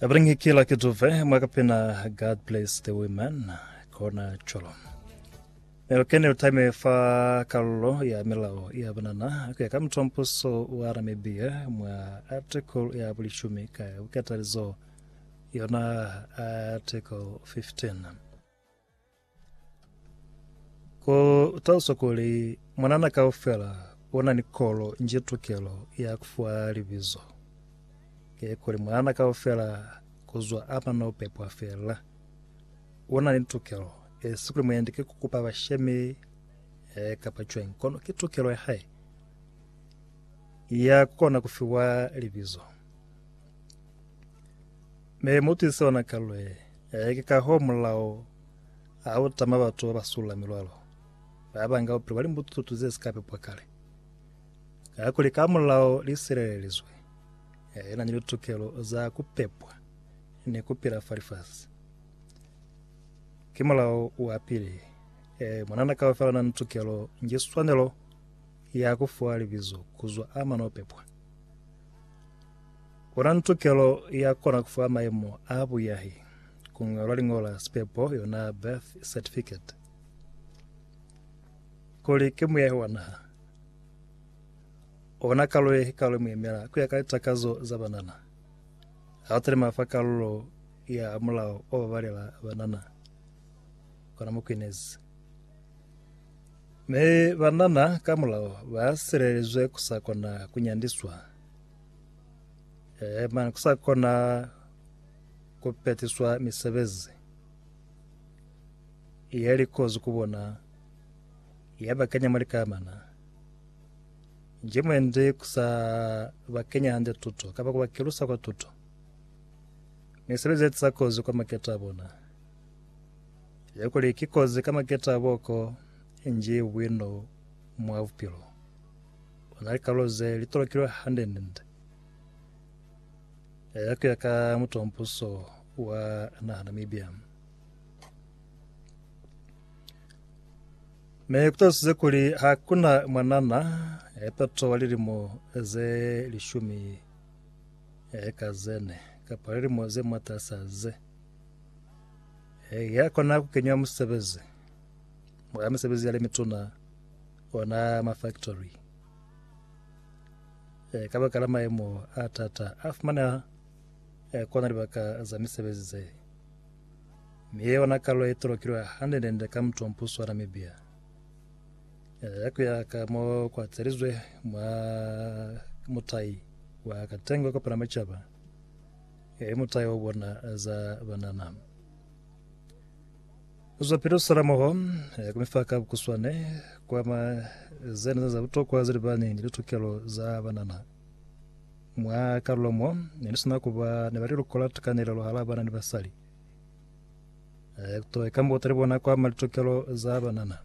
Bring kila kiduve mwakapena God bless the women kona cholo nelokene utime fa kalulo ya milao ya banana kuya ka mutompuso wa Namibia mwa article ya bulishumi ka bukatalizo yona article 15 Ku taluswa kuli mwanana kaufela u na ni kolo nji tukelo ya ku fiwa libizo. Ki kuli mwanana kaufela ku zwa a mana u pepwa fela. U na ni tukelo, e si kuli muendi ki ku kupa bashemi eh, kapa cwañi, kono ki tukelo ya hae ya ku kona ku fiwa libizo. Ne mu twize ona kalwe ya eke ka ho mulao ha u tama batu ba ba sula milwalo ba banga bupilo bwa limbututu ze si ka pepwa kale. Kakuli ka mulao li silelelizwe, ya ina ni litukelo za ku pepwa ni ku pila fa lifasi. Ki mulao wa pili. E, munana kaufela na ni tukelo ni swanelo ya ku fuwa libizo kuzwa a mano pepwa. U na ni tukelo ya kona ku fa mayemo a buyahi, ku ñwalwa liñolo la sipepo, yona birth certificate, kuli ki muyahi wa naha. U na kalulo ye kikalo ye mu yemela ku ya ka litakazo za banana. Ha u talima fa kalulo ya mulao o babalela banana, kona mu kwinezi. Mi banana ka mulao ba silelezwe ku sa kona ku nyandiswa. Eh, mani kusakona kupetiswa misebezi yalikozi kubona yabakanya muli kamana njimwende kusa bakenya hande tuto kapa kubakelusa kwa tuto misebezi yatisa kozi kwa maketa bona yakuli kikozi ka maketa boko nje bwino mwa bupilo Ku na likalulo ze li tolokilwe hande-nde eh, ku ya ka mutombuso wa naha Namibia. Me ku talusize kuli ha ku na mwanana eh, pato wa lilimo ze lishumi eh, ka zene kapa lilimo ze matasa ze eh, ya kona ku kenywa musebezi mwa misebezi ya le mituna ona mafaktori e, ka baka la maemo a tata a fumaneha e, kona libaka za misebezi ze mi ye ona kalo e tolokilwe hande nende ka mutwa mpuso wa Namibia e, ya kuya ka mo kwa tselizwe mwa mutai wa katengo kopana macaba e, mutai o bona za banana Zwa pilusela moho ku mi fa ka bukuswane kwa ma ze ne za butokwa ze libani ni litukelo za banana. Mwa kalulo mo ne ni sina ku ba ni ba liluko la tukanelelo hala bana ni basali, ku to ikambuta li bona kwa ma litukelo za banana.